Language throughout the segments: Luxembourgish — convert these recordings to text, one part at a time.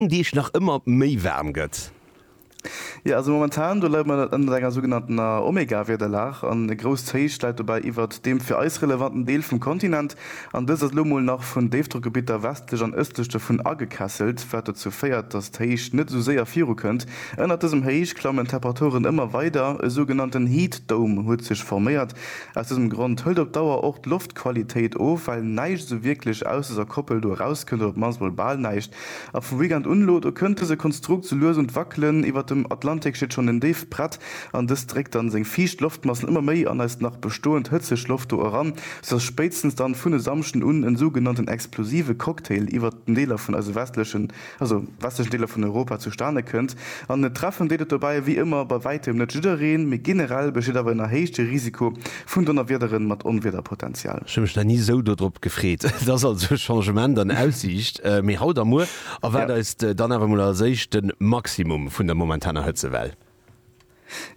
Deeg nach ëmmer méi waarm gëtt. Jo, also momentan do leide mer ënnert enger sougenanntener Omega-Wiederlag an e grousst Héich läit dobäi iwwert deem fir eis relevanten Deel vum Kontinent an dëst ass elo mol nach vun Déifdrockgebitter westlech an ëstlech dovun agekesselt, wat dozou féiert, dass d'Héich net esou séier virukënnt. Ënnert dësem Héich klammen d'Temperaturen ëmmer weider, e sougenannten Heat Dome huet sech forméiert. Aus dësem Grond hëlt op Dauer och d'Loftqualitéit of, well näischt esou wierklech ausser Koppel do erauskënnt oder op d'mannst mol bal näischt. A vum Weekend un elo, do kënnt dëse Konstrukt sou lues un d'Wackelen. Iwwert dem Atlantik steet schonn en Déifbrett an dëst dréckt dann seng fiicht Loftmassen ëmmer méi an eis nach bestoend hëtzeg Loft do eran, soudass spéitstens dann vun e Samschden un en sougenannten explosive Cocktail iwwert den Deeler vun eise westlechen, also westlechen Deeler vun Europa zustane kënnt. An treffen deet et dobäi ewéi ëmmer bei wäitem net jiddereen, mee generell besteet awer en erhéichte Risiko Vun Donnerwiederen mat Onwiederpotenzial. Ech hu mech nach ni sou dodrop gefreet. Et ass also e Changement an Aussiicht, mee haut a muer erwaart eis dann awer mol als éischt de Maximum vun der momentaner Hëtzewell.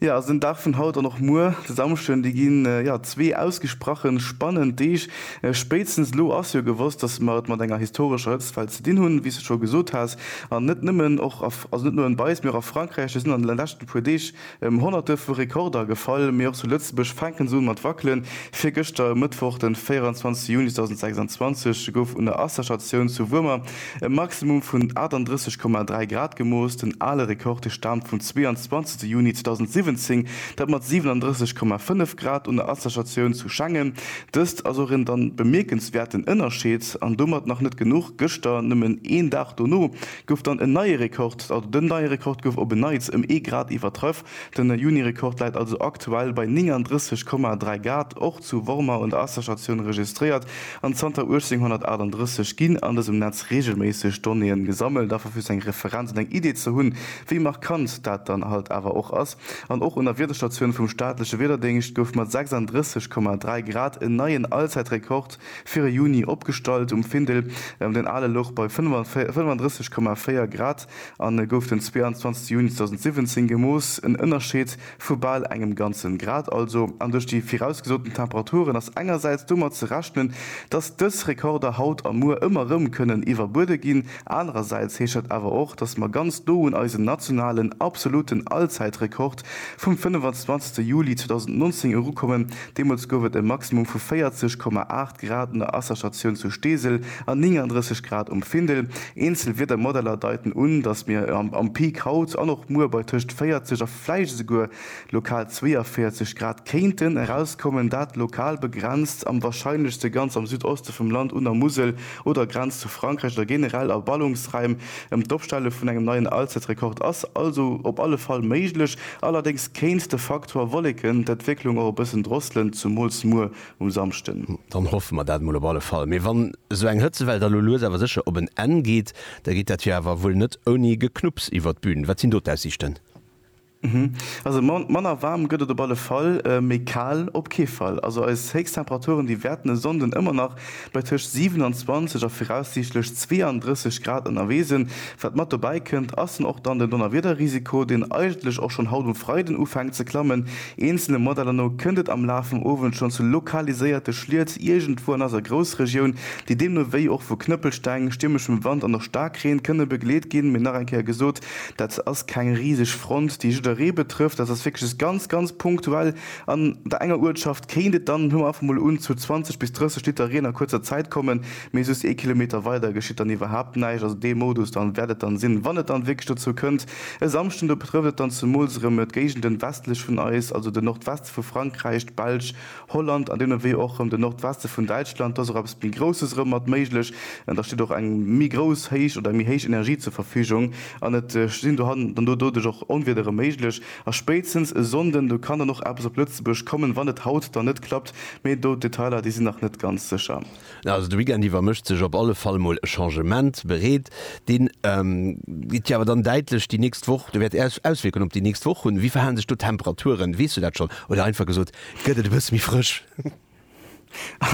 Jo, also den Dag vun haut an och muer, de Samschden, déi ginn jo zwee ausgesprache spannend Deeg. Spéitstens elo ass jo gewosst, dass mer et mat enger historescher Hëtztwell ze dinn hunn, wéi s de scho gesot has. An net nëmmen, och a, also net nëmmen bei eis, mee och a Frankräich, do sinn an de leschten puer Deeg, Ëm Honnerte vu Rekorder gefall, mee och zu Lëtzebuerg fänken se un mat wackelen. Virgëschter, e Mëttwoch de 24 Juni 2026, gouf un der Wasserstatioun zu Wuermer e Maximum vun 38,3 Grad gemooss. Den ale Rekord staamt vum 22 Juni 2017, dat mat 37,5 Grad un der Wasserstatioun zu Schengen. Dëst ass och en dann bemierkenswäerten Ënnerscheed. An domat nach net genuch, gëschter, nëmmen een Dag dono, gouf dann en neie Rekord, also den neie Rekord gouf op en Neits ëm ee Grad iwwertrëff. Den Juni-Rekord läit also aktuell bei 39,3 Gad. Och zu Wormer un der Asserstatioun registréiert an zanter 1838 ginn an dësem Netz reegelméisseg Donnéeën gesammelt, einfach fir sou eng Referenz an eng Idee ze hunn, wéi markant dat dann halt awer och ass. An och un der Wiederstatioun vum staatleche Wiederdéngscht gouf mat 36,3 Grad en neien Allzäitrekord. Fir e Juni opgestallt um Findel. Den ale louch bei 35,4 Grad an gouf den 22 Juni 2017 gemooss. En Ënnerscheed vu bal engem ganzen Grad also. An duerch déi virausgesoten Temperaturen ass engersäits domat ze rechnen, dass dës Rekorder haut a muer ëmmer erëm kënnen iwwerbuede ginn. Anerersäits heescht dat awer och, dass mer ganz no un eisen nationalen absoluten Allzäitrekord Vum 25 Juli 2019 eru kommen, deemools gouf et e Maximum vu 40,8 Grad un der Asserstatioun zu Steesel an 39 Grad um Findel. Eenzel Wiedermodeller deiten un, datt mir am Peak haut an och muer bei tëscht 40 a vläicht esouguer lokal 42 Grad kéinten erauskommen, dat lokal begrenzt am warscheinlechste ganz am Südoste vum Land un der Musel oder Grenz zu Frankräich oder generell a Ballungsraim. ëm d'Opstelle vun engem neien Allzäitrekord ass also op alle Fall méiglech. Allerdéngs kéint de Faktor Wolleken d'Entwécklung och e bëssen drosselen, zumools muer um Samschden. Dann hoffe mer dat mol op alle Fall. Mee wann esou eng Hëtzewell da lo lues awer sécher op en Enn geet, da geet dat jo awer wuel net ouni Geknupps iwwer d'Bün. Wat sinn do d'Aussiichten? Also manner waarm gëtt et op alle Fall, méi kal op kee Fall. Also eis Héichstemperaturen déi wäerten e Sonnden ëmmer nach bei tëscht 27 a viraussiichtlech 32 Grad ënnerwee sinn. Wat mat dobäi kënnt, ass dann och dann den Donnerwiederrisiko, deen eigentlech och schonn haut um Freiden ufänkt ze klammen. Eenzele Modeller no kënnt et am Laf vum Owend schonn zu lokaliséierte Schliet iergendwou an eiser Groussregioun, déi deemno wéi och vu Knëppelsteng, stiermeschem Wand an och Staarkreen kënne begleet ginn. Mee nach eng Kéier gesot, Dat ass keng riseg Front, déi jidderee betrëfft. Dat ass wierklech just ganz, ganz punktuell. An der enger Uertschaft kéint et dann, huele mer einfach mol un, zu 20 bis 30 Liter Reen a kuerzer Zäit kommen, mee just ee Kilometer weider geschitt dann iwwerhaapt näischt. Also dee Modus dann wäert et dann sinn, wann et dann wierklech dozou kënnt e Samschden. Do betrëfft et dann zemools erëm d'Géigenden westlech vun eis, also den Nordweste vu Frankräich, d'Belsch, Holland an deemno Wee och erëm den Nordweste vun Däitschland. Do ass och eppes méi Grousses erëm mat méiglech. Da steet och eng méi grouss héich oder eng méi héich Energie zur Verfügung an et sinn dohannen dann doduerch och Onwieder erëm méiglech. A spéitstens e Sonnden, do kann dann och eppes op Lëtzebuerg kommen, wann et haut dann net klappt. Mee do d'Detailer, déi sinn nach net ganz sécher. Also de Weekend iwwer mécht sech op alle Fall mol e Changement bereet. Dee geet jo awer dann däitlech déi nächst Woch, do wäert Äis Auswierkungen op déi nächst Woch hunn. Wéi verhalen sech do d'Temperaturen? Weess du dat schonn? Oder einfach gesot, gëtt et e bësse méi frësch?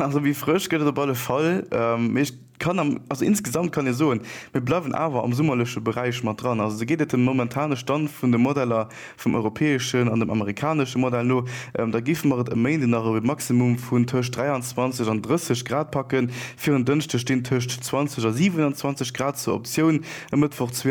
Also méi frësch gëtt et op alle Fall. Mee ech kann am, also insgesamt kann ee soen, mir bleiwen awer am summerleche Beräich mat dran. Also esou geet et dem momentane Stand vun de Modeller vum europäeschen an dem amerikanesche Modell no, da géife mer et e Méinden nach op e Maximum vun tëscht 23 an 30 Grad packen. Fir en Dënschde stinn tëscht 20 a 27 Grad zur Optioun, e Mëttwoch 22.